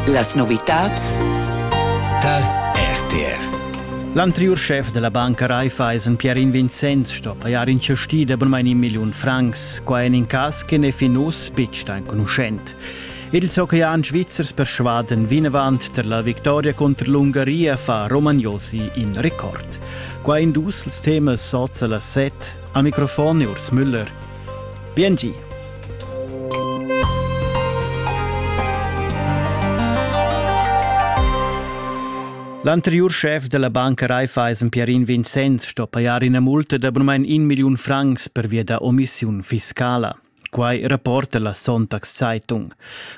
Las novitads tar RTR L'anteriur schef della banca Raiffeisen Pierin Vincenz sto pajar in cesti de bunmein in million francs, qua en in cas che ne fin us bitg enconuschent. Il Zocchian Svizzers persuaden vinavant ter la victoria contro l'Ungaria fa Romagnosi in record. Qua in dus temas sozza la set, a microfon Urs Müller, Biengi! L'anteriur schef della banca Raiffeisen Pierin Vincenz sto pajar ina multa de abunament in million francs per via da omissiun fiscala. Quai rapporta la Sonntagszeitung.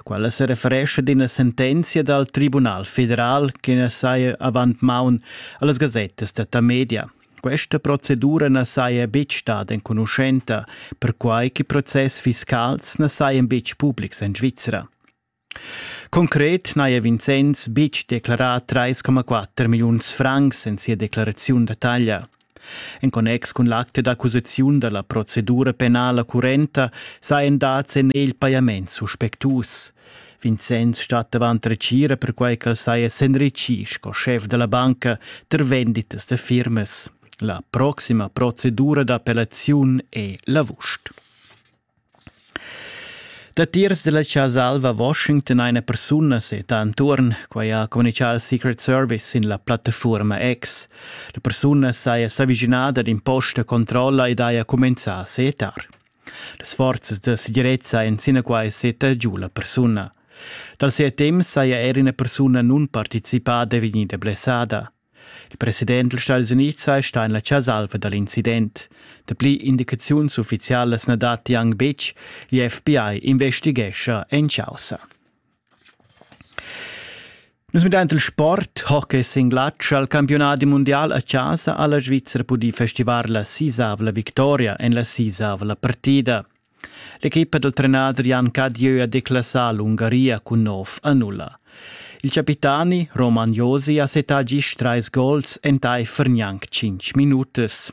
Quella se referesce ad ina sentenzia dal Tribunal federal che ne saia avant maun allas gazettas da Tamedia. Questa procedura na saja betg stada enconuschenta, perquai che process fiscals na sajan betg publics en Svizra. Concret n'haja Vincenz betg declarà 3,4 milliuns francs en sia declaraziun da taglia. En connex cun l'acte d'accusaziun da la procedura penala currenta sajan dads en egl pajaments suspectus. Vincenz stat davant retgira perquai ch'el saja s'enritschì sco schef da la banca tar venditas da firmas. La proxima procedura d'appellaziun è l'avust. Datiers della Casa Alva a Washington eine persona seta attuorn, quai ha communichà il Secret Service in la plattafuorma X. La persuna saja s'avischinada ad imposta controlla ed haja cumenzà a setar. Las forzas da segirezza ein sinaquai seta giu la persuna. Dal ses temps saja er ina persuna nunparticipada vegnida blessada. Il president dals Stati Unids ha stà en la chasalva da l'incident. Dapli indicaziuns uffizialas na datti anc betg. L'FBI investighescha en chaussa. Nus midain il sport, ho che singlatsch al campiunadi mundial a chasa ha la Svizra pudì festivar la sisavla victoria en la sisavla partida. L'equipa dal trenader Jan Cadieu ha declassà l'Ungaria cun nov a nulla. Il capitani Roman Josi ha setà gist trais gols entaifer gnanc cinc minutas.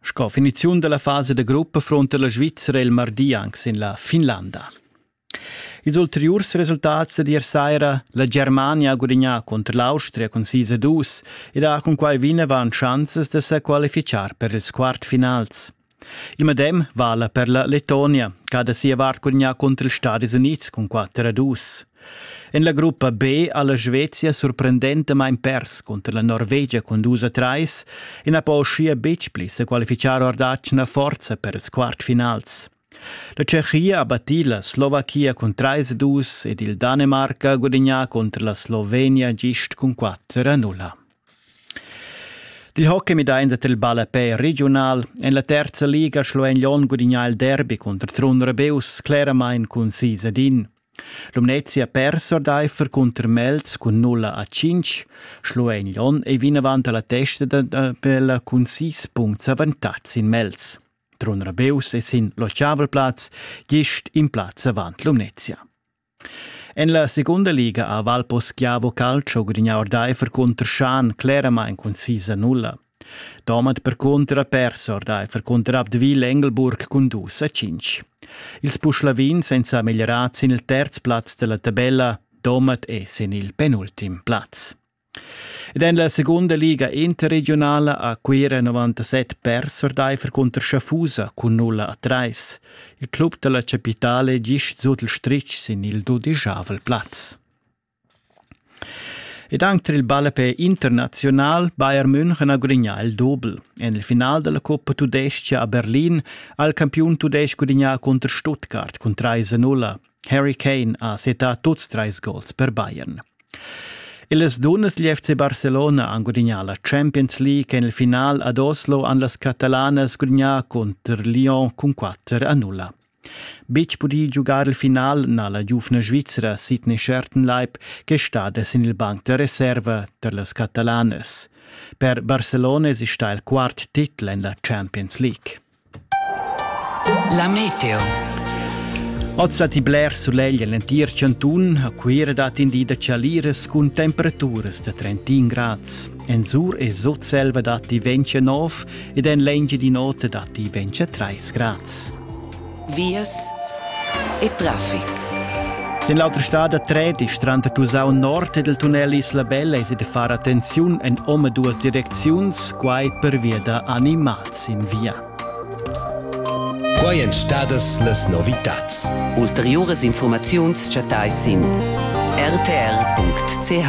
Sco finiziun dalla fasa da gruppa fronta la Svizra il mardi anc sin la Finlanda. Ils ulteriurs resultats da ier saira, la Germania ha gudignà contro l'Austria cun 6-2 ed ha cunquai vinavant chanzas da sa qualificar per ils quartfinals. Il medem vala per la Letonia, che ha da sia vart gudignà contro ils Stati Unids cun 4-2. En la gruppa B ha la Svezia surprendentamain pers cunter la Norvegia cun dus a trais e na po uschia betg pli sa qualifichar or d'atgna forza per ils quartfinals. La Tschechia ha battì la Slovachia cun 3-2 ed il Danemarc ha gudagnà contro la Slovenia gist cun 4-0. Il hockey midain dat il ballapè regiunal. En la terza liga Schluein Lyon gudagnà il derby cunter Trun Rebeus, cleramain cun 6 ad 1. Lumnezia persa ordaifer cunter Mels cun 0 a 5. Schluein Lon ei vinavant alla testa da, da, per cun 6 punts avantatg in Mels. Trun Rabeus è sin l'Ochavelplatz, gist in plaz avant Lumnezia. En la segunda liga a Valposchiavo Calcio gudignà ordaifer cunter Schan claramain cun 6 a 0. Domat percunter ha pers ordaifer cunter Abdeville Engelburg cun dus a cinc. Ils Puschlavins ein sa meglierats sin il terz plaz dalla tabella, Domat è sin il penultim plaz. Ed en la segunda liga interregionala ha Cuira 97 pers ordaifer cunter Schaffusa cun 0 a 3. Il club dalla capitale gist sut il stritg sin il dudeschavel plaz. Ed anc tar il ballapè internaziunal Bayern München ha gudignà il dobel. En il final da la cuppa tudestga a Berlin ha il campiun tudestg gudignà cunter Stuttgart cun 3-0. Harry Kane ha settà tuts trais gols per Bayern. Las dunnas degl FC Barcelona han gudignà la Champions League en il final ad Oslo han las catalanas gudignà cunter Lyon cun 4-0. Betg pudì giugar il final n'ha la giuvna Svizra Sidney Schertenleib ch'è stada sin il banc da reserva tar las Catalanas. Per Barcelona è stà il quart titel en la Champions League. La meteo. Oz datti bler sulegl en l'entir chantun. A Cuira dat in di da chaliras cun temperaturas da 31 grads. En sur e Sutselva datti 29 ed en l'Engiadin'Ota datti 23 grads. Vias e traffic. In l'autra stad da Tredi, tranter Tusau Nord ed il tunnel Isla Bella è da far attenziun en ome duas direcziuns, quai pervia da animals in via. Quai èn stadas las novitads. Ulteriuras informaziuns chattais sin rtr.ch.